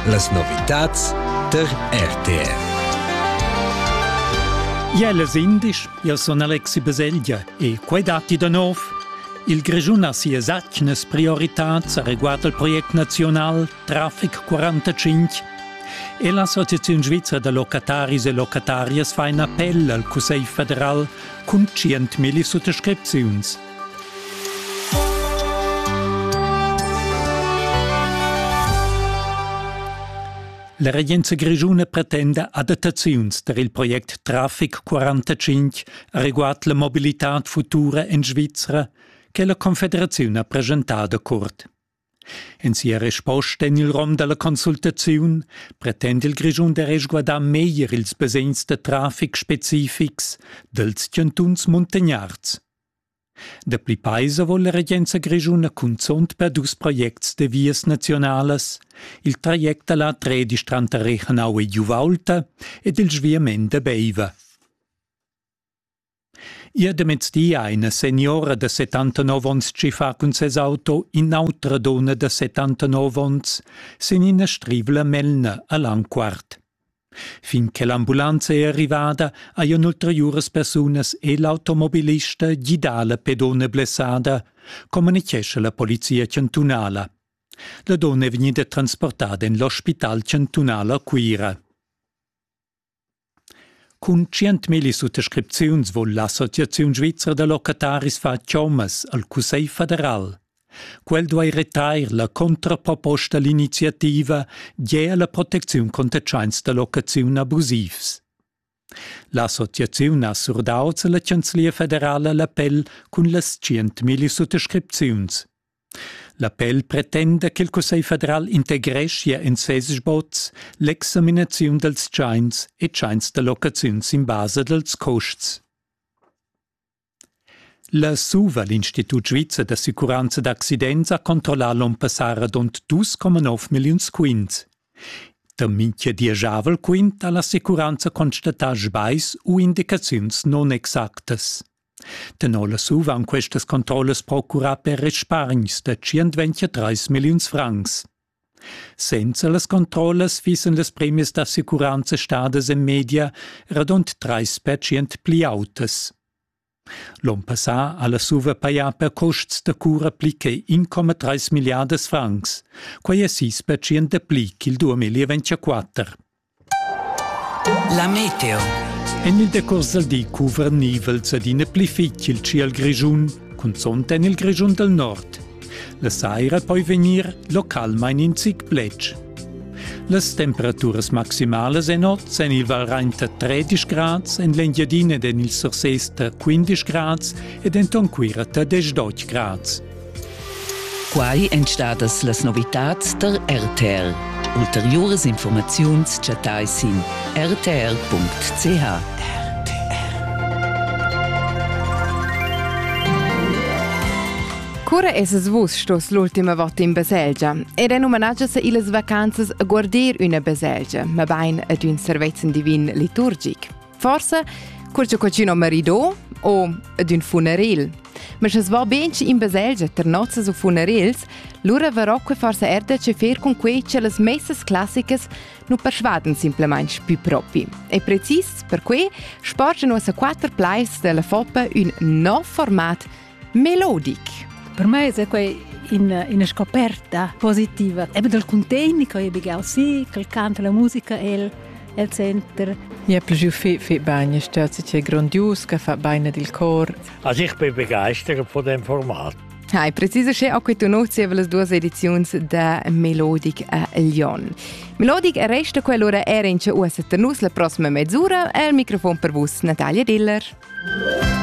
Las novitads tar RTR. Iellas indisch, io son Alexi Baselgia e quai datti da nov. Il Grischun ha sias atgnas prioritats a reguard al project nazional Traffic 45 e l'Associaziun svizra da locataris e locatarias fa in appell al Cussegl federal cun 100.000 suttascripziuns La regenza grischuna pretenda adattaziuns per il project Traffic 45 reguard la mobilitad futura en Svizra che la Confederaziun ha presentado curt. En sia resposta en il rom della consultaziun pretende il Grischun da resguardar meglier ils basegns da traffic specifics dels chantuns muntagnards Dapli paisa vo la regenza grischuna cunzunt per dus projects da vias naziunalas, il traject da la tredisch tranter Rechenau e Giuvaulta ed il sviament da Beiva. Ia da mezdi ha ina seniora da 79 onns chi fa cun ses auto in'autra donna da 79 onns sin ina strivla melna a Langquart. Fin che l'ambulanza è arrivada hajan ulteriuras persunas e l'automobilista gidà la pedona blessada, communitgescha la polizia chantunala. La donna è vegnida transportada en l'ospital chantunal a Cuira. Cun 100.000 suttascripziuns vul l'associaziun svizra da locataris far chommas al Cussegl federal. Quel duei retrair la contraproposta all'iniziativa gie alla protecziun conter tscheins da locaziun abusivs. L'associaziun ha surdau alla Chanzlia federala l'appell cun las tschientmilli suttascripziuns. L'appell pretenda che il Cussegl federal integreschia en ses sboz l'examinaziun dals tschains e tschains da locaziun sin basa dals custs. La SUVA, l'Institut svizzer d'assicuranza d'accidents, ha controllà l'onn passà radund 2,9 milliuns quints. Da mintga dieschavel quint ha l'assicuranza constatà sbais u indicaziuns nunexactas. Tenor la SUVA han questas controllas procurà per respargns da 123 milliuns francs. Senza las controllas fissen las premias d'assicuranza stadas en media radund trais pertschient pli autas. L'onn passà ha la SUVA pajà per custs da cura pli che 1,3 milliardas francs. Quai è sis pertschient dapli ch'il 2024. La meteo. En il decurs dal di cuvernievels ed ina pli fitg il tschiel grischun, cunzont en il Grischun dal nord. La saira poi vegnir localmain in zic pletg. Las temperaturas maximalas en oz en il Valrain da 13 grads, en l'Engiadina ed en il Surses da 15 grads ed enton Cuira da 18 grads. Quai èn stadas las novitads tar RTL. Ulteriuras informaziuns chattais sin rtl.ch. Cura esas vus stos l'ultima vota in baselgia ed è numnagias illas vacanzas a guardir üna baselgia, mabain ad ün servezzan divin liturgic? Forse cur che cucina marido o d'ün funeril. Ma sche va ben in baselgia ter nozzas u funerils, lura verrà que forse er da che fer con quei che las messas classicas nu persuadan simplemente più propi. E precis per que sporge nossa quatter pleis della Foppa un nov format Melodic. Per me è quei in, ina scoperta positiva. Eben dal contegn che io begal si, che canta la musica el el center. Ja più fi fi bene, stört sich grandios, che fa bene del cor. Also ich bin begeistert von dem Format. Hai preciso še a quei nozie las duas edizions da Melodic a Lyon. Melodic resta quell'ora era in uossa nus la prossima mezz'ora al microfon per vus Natalia Diller.